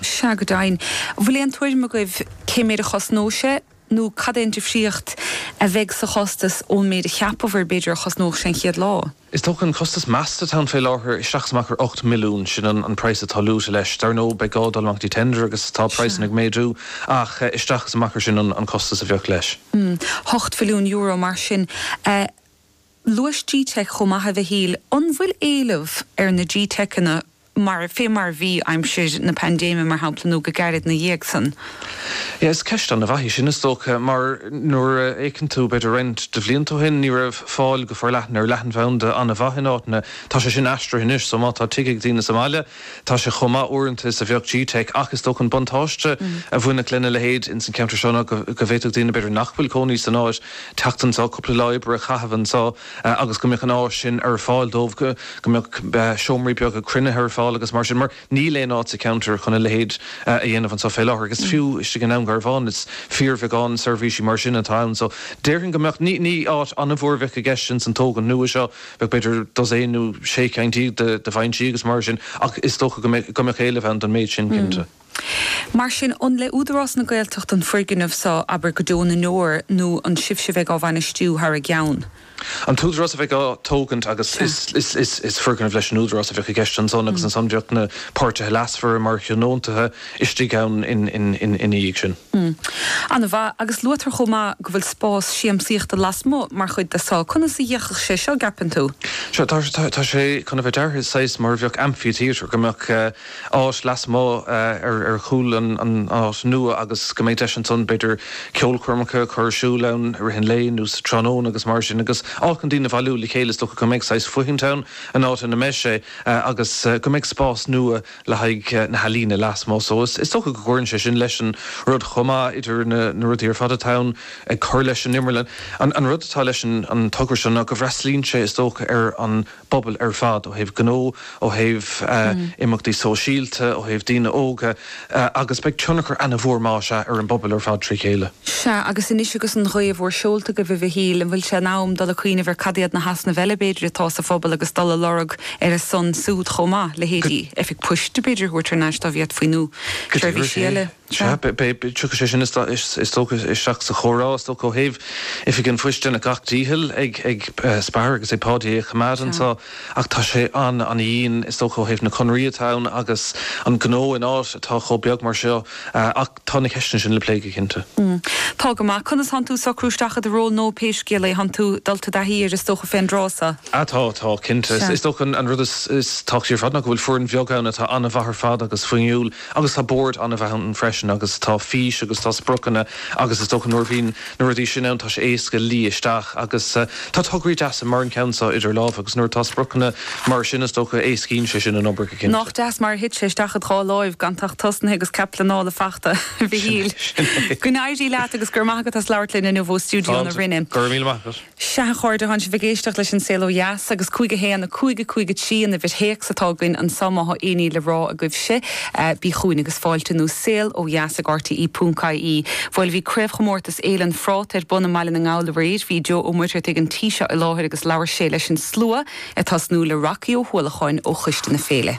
Sea go deimhin. An bhfuil aon tuairim agaibh cé méid a chosnóidh sé nó cad é an difríocht a bheidh sa chostas ón méid a cheapabhair b'fhéidir a chosnódh sé an chéad lá? Is dócha an costas measta atá ann fé láthair isteach is amach ar 8 milliún, sin an praghas atá luaite leis. Dar ndóigh beidh gá dul amach go dtí tender agus tá praghsanna ag méadú ach isteach is amach ar sin an costas a bheadh leis. Ocht mhilliún euro mar sin. Luais G-teic chomh maith, a Mhichíl. An bhfuil éileamh ar na G-teiceanna mar, fé mar a bhí aimsir na paindéime, mar shampla, nó go gairid 'na dhiaidh san? Is ceist ana mhaith í sin, is dócha, mar nuair a fhéiceann tú b'fhéidir roinnt de bhlianta ó shin ní raibh fáil go forleathan ar leathanbhanda ana mhaith in áiteanna. Tá sé sin aistrithe anois so má tá tigh ag daoine sa mbaile, Tá sé chomh maith uaireanta is a bheadh G-Teic ach is dócha an buntáiste a bhainfeadh lena leithéid ins an cheantar seo ná go bhféadfadh daoine, b'fhéidir, nach bhfuil cónaí san áit, teacht anseo, cúpla lá oibre a chaitheamh anseo agus go mbeadh an áis sin ar fáil dóibh, go mbeadh seomraí beaga cruinnithe ar fáil agus mar sin mar níl aon áit sa cheantar chun a leithéid a dhéanamh anseo fé láthair agus fiú istigh i nDún Garbhán is fíorbheagán seirbhísí mar sin atá ann so déarfainn go mbeadh, ní áit an-mhór a bheadh i gceist ins an tógaint nua seo. b'fhéidir, dosaen nó sé cinn déag de bhinsí agus mar sin ach is dócha go mbeadh éileamh ann don méid sin, cinnte. Mar sin, an le Údarás na Gaeltachta an foirgneamh so, abair, go deo na ndeor nó an sibhse a bheidh á bhainistiú thar a gceann? An tÚdarás a bheidh á tógaint agus is foirgneamh leis an Údarás a bheadh i gceist ansan agus ansan bheadh na páirtithe leasmhara mar thionóntaithe. istigh ann ina dhiaidh sin. An-mhaith. Agus luaitear chomh maith go bhfuil spás siamsaíochta lasmuigh mar chuid de seo. Conas a d'fhéachfadh sé seo, gceapann tú? Sea, tá sé chun a bheith deartha saghas mar a bheadh amphitheatre, go mbeadh áit lasmuigh ar chúl an áit nua agus go mbeidh deis ansan b'fhéidir ceolchoirmeacha a chur ar siúl ann i rith an lae nó sa tráthnóna agus mar sin agus áit chun daoine a bhailiú le chéile. Is dócha go mbeidh saghas foithint ann, an áit ina mbeidh sé agus go mbeidh spás nua le haghaidh na healaíne lasmuigh so is dócha go gcuireann sé sin leis an rud chomh maith idir na rudaí ar fad atá ann ag cur leis an Imearlann. An rud atá leis an togra seo ná go bhfreastlaíonn sé is dócha ar an bpobal ar fad ó thaobh gnó, ó thaobh imeachtaí sóisialta, ó thaobh daoine óga agus beidh tionchar ana mhór más ea ar an bpobal ar fad trí chéile. Sea, agus anois agus an ghaoth in bhur seolta agaibh, a Mhichíl, an bhfuil sé in am dul ag cuimhneamh ar cad iad na heasnaimh eile, b'fhéidir, atá sa phobal agus dul a lorg ar a son súd chomh maith, leithéidí oifig poist, b'fhéidir, a thabhairt thar n-ais dá bhféadfaí nó Go deimhin, seirbhísí sea. eile? Sea. Sea, b'fhéidir, tiocfaidh sé sin is dócha isteach sa chomhrá, is dócha, ó thaobh oifig an phoist deineadh gach dícheall ag Spar agus ag Páidí é a choimeád Sea. anseo ach tá sé an-dhian, is dócha, ó thaobh na conraí atá ann agus an gnó in áit atá chomh beag mar seo ach, Tá na ceisteanna sin le plé go cinnte. Tá go maith. Conas thánn tú socrú isteach i do ról nua pé scéal é? Thánn tú dul i dtaithí air is dócha fén dtráth seo? Tá, tá, cinnte. Is dócha an rud is tábhachtaí ar fad ná go bhfuil foireann bheag ann atá an-mhaith ar fad agus fuinniúil agus tá bord an-mhaith ann freisin agus tá fís agus tá spriocanna agus is dócha nuair a bhíonn Na rudaí sin ann, tá sé éasca luí isteach agus tá tograí deasa mar an ceann seo idir lámha agus nuair atá spriocanna mar sin, is dócha, éascaíonn sé sin an obair go cinnte. Nach deas mar a thit sé isteach id dhá láimh gan tú ach tosnaithe agus cead pleanála faighte, a Mhichíl. Go n-éirí leat agus go raibh maith agat as labhairt linn inniu ó stiúideo na Rinne. Go raibh míle maith agat. Sea, a chairde, thánn sibh ag éisteacht leis an Saol Ó Dheas agus cúig a haon, a cúig, a cúig, a trí an uimhir téacs atá againn anseo má thá éinní le rá agaibh scríobh chugainn agus fáilte nó saol ó dheas ag rte.ie. Bhoil, bhí craobhchomórtas Fhéile an Phráta ar bun i mBaile na nGall aréir. Bhí Joe Ó Muircheartaigh an tí seo i láthair agus labhair sé leis an slua ag tosnú le Rocky Ó hUallacháin ó choiste na féile.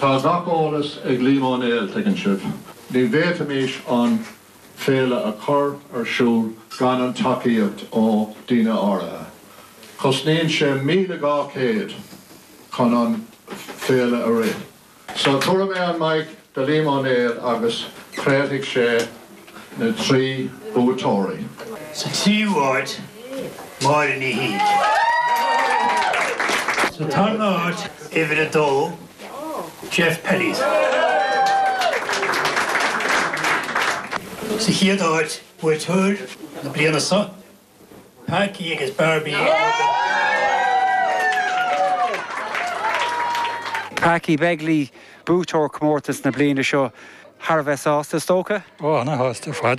Tá gach eolas ag Liam Ó Néill, tuigeann sibh. Ní bhféadfaimís an féile a chur ar siúl gan an tacaíocht ó daoine áirithe. Cosnaíonn sé míle dhá chéad chun an féile a rith. So cuirfidh mé an mic do Liam Ó Néill agus craolfaidh sé na trí buaiteoirí. Sa tríú háit, Máire Ní Shíthigh. Sa tarna háit, uimhir a dó, Geoff Pellies. Sa chéad áit, buaiteoir na bliana seo. Packie agus Barbie ag obair go Packie Begley, buaiteoir comórtas na bliana seo, thar a bheith sásta, is dócha? Ó, ana-shásta ar fad.